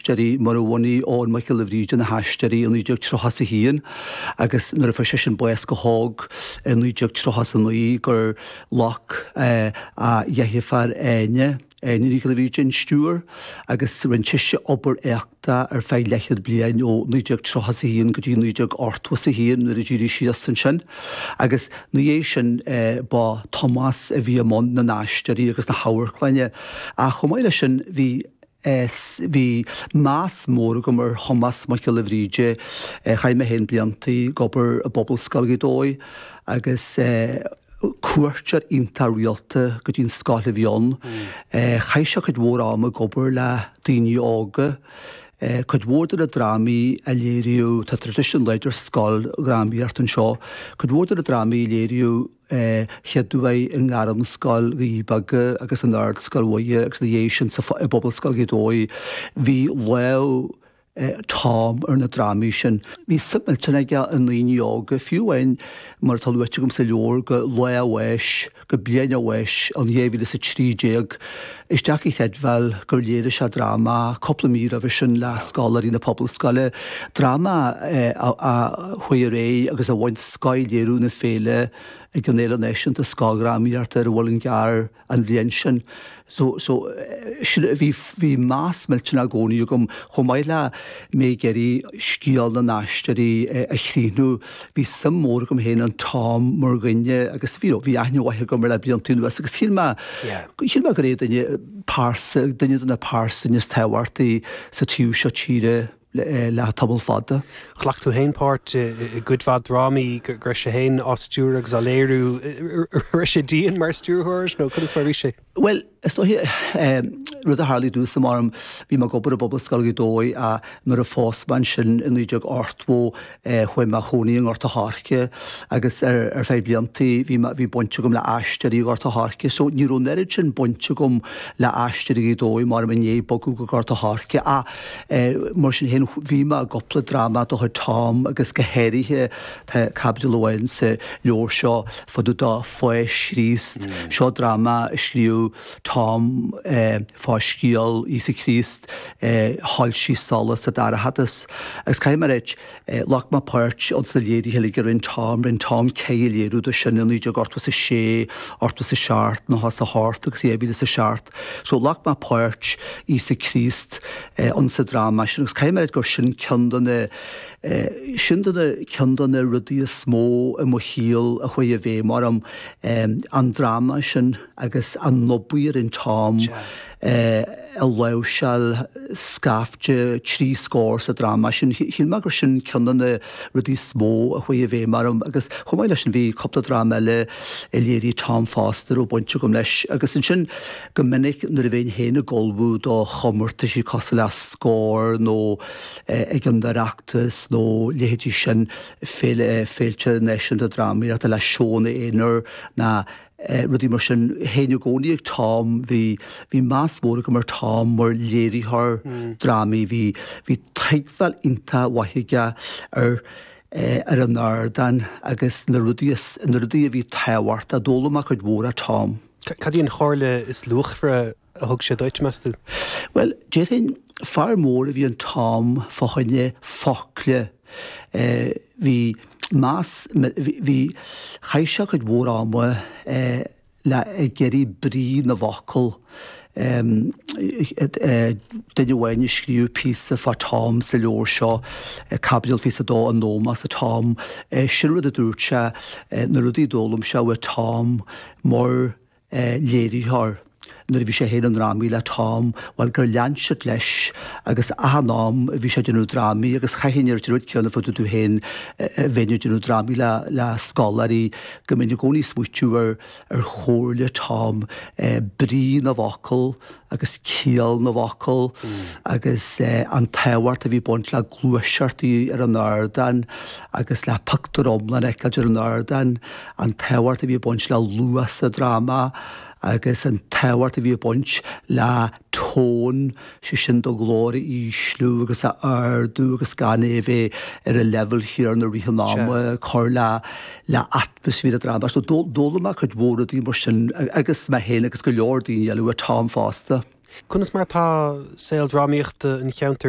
haisteoirí mar a bhunaigh Eoghan Mac Giolla Bhríde na hAisteoirí i 1931 agus nuair a fuair seisean bás go hóg i 1939 gur ghlac a dheirfiúr Áine, Áine Nic Giolla Bhríde, an stiúir agus rinne sise obair éacta ar feadh leathchéad bliain ó 1931 go dtí 1981 nuair a d'éirigh sí as ansin agus ina dhiaidh sin ba Tomás a bhí i mbun na nAisteoirí agus na hAmharclainne ach chomh maith leis sin bhí Is bhí meas mór agam ar Thomás Mac Giolla Bhríde. Chaith mé féin blianta ag obair i bPobalscoil Ghaoth Dobhair agus cuairteoir iontach rialta go dtí an scoil a bhí ann. Chaith sé cuid mhór ama ag obair le daoine óga. Cuid mhór de na drámaí a léiríodh, tá traidisiún láidir scoildrámaíochta anseo, cuid mhór de na drámaí a léiríodh, a chéaduair i nGairmscoil Dhoirí Beaga agus in Ardscoil Mhuire agus ina dhiaidh sin i bPobalscoil Ghaoth Dobhair. Bhí lámh Tom ar na drámaí sin. Bhí suim millteanach aige i ndaoine óga, fiú amháin, mar atá luaite agam sa leabhar, go lá a bháis, go bliain a bháis, in 2013. is deacair a chreidbheáil gur léirigh sé dráma cúpla mí roimhe sin le scoláirí na Pobalscoile, dráma a chuaigh ar aghaidh agus a bhain scoth-léiriú na féile ag an Fhéile Náisiúnta Scoildrámaíochta ar an Mhuileann gCearr an bhliain sin. So, so, sin, bhí, bhí meas millteanach i gcónaí agam, chomh maith le mé ag iarraidh scéal na n-aisteoirí a chríochnú, Bhí suim mhór agam féin in Tom mar dhuine agus bhí aithne mhaith agam air le blianta anuas agus shíl mé gur é duine, pearsa, duine de na pearsain is tábhachtaí sa taobh seo tíre le tamall fada. Ghlac tú féin páirt i gcuid mhaith drámaí go raibh sé féin á stiúradh agus á léiriú. Raibh sé dian mar stiúrthóir nó conas mar a bhí sé? Bhuel, is dóiche ehm, rud a tharlaigh domhsa ehm, bhí mé ag obair i bPobalscoil Ghaoth Dobhair ach nuair a phós mé ansin i 1982 eh, chuaigh mé a chónaí i nGort an Choirce agus ar, ar feadh blianta bhí, me- bhí baint agam le aisteoirí i nGort an Choirce so ní raibh an oiread sin baint agam le aisteoirí Ghaoth Dobhair mar mé i ndiaidh bogadh go Gort an Choirce ach eh, mar sin féin bhí mé i gcúpla dráma de chuid Tom agus go háirithe Tá caibidil amháin sa leabhar seo fá dtaobh de Pháis Chríost. Seo dráma a scríobh Tom fá scéal Íosa Críost eh Shoilsigh Solas sa Dorchadas. Agus caithfidh mé a ráit, ghlac mé páirt ins na léirithe uilig a rinne Tom. Rinne Tom ceithre léiriú de sin, i 1986, 87, 98 agus i 2007. So ghlac mé páirt Íosa Críost insa dráma sin agus caithfidh mé a ráit gur sin ceann de na, É sin de na ceann de na rudaí is mó i mo shaol a chuaigh i bhfeidhm orm, an dráma sin agus an obair a rinn Tom ag láimhseáil scaifte trí scór sa dráma sin. Shíl mé gur sin ceann de na rudaí is mó a chuaigh i bhfeidhm orm agus chomh maith leis sin bhí cúpla dráma eile a léirigh Tom fosta a raibh baint agam leis agus ansin go minic nuair a bheinn féin ag ullmhú do chomórtaisí cosúil le Scór nó ag an Oireachtas nó leithéidí sin, féilte náisiúnta drámaíochta le seónna aonair nó rudaí mar sin. Théinn i gcónaí ag Tom, bhí meas mór agam ar Tom mar léiritheoir drámaí. Bhí tuigbheáil iontach mhaith aige ar an ardán agus na rudaí a bhí tábhachtach d'fhoghlaim mé cuid mhór ó Tom. Cad í an chomhairle is luachmhaire a thug sé duit, meas tú? Bhuel, déarfainn, fear mór a bhí in Tom fá choinne focla. Bhí meas, bhí, chaith sé cuid mhór ama le, ag iarraidh brí na bhfocal. Duine amháin a scríobh píosa fá Tom sa leabhar seo, caibidil fiche is a dó, in ómós do Tom, sin rud a dúirt sé, na rudaí a d'fhoghlaim sé uaidh Tom, mar léiritheoir nuair a bhí sé féin i ndrámaí le Tom, bhuel gur lean siad leis agus achan am a bhí sé ag déanamh drámaí agus chaithfinn a ráit an rud céanna fá dtaobh domh féin a bheinn ag déanamh drámaí le le scoláirí go mbeinn i gcónaí ag smaoitiú ar chomhairle Tom, brí na bhfocal, agus ciall na bhfocal agus an tábhacht a bhí ag baint le gluaiseacht ar an ardán agus le pictiúr iomlán a fheiceáil ar an ardán, an tábhacht a bhí ag baint le luas sa dráma agus an tábhacht a bhí ag baint le tone, sé sin do ghlór a ísliú agus a ardú agus gan é a bheith ar an leibhéal chéanna i rith an ama, cur le. le atmaisféar an dráma. So d'fhoghlaim mé cuid mhór rudaí mar sin agus mé féin agus go leor daoine eile uaidh Tom fosta. Conas mar atá saol drámaíochta an cheantair?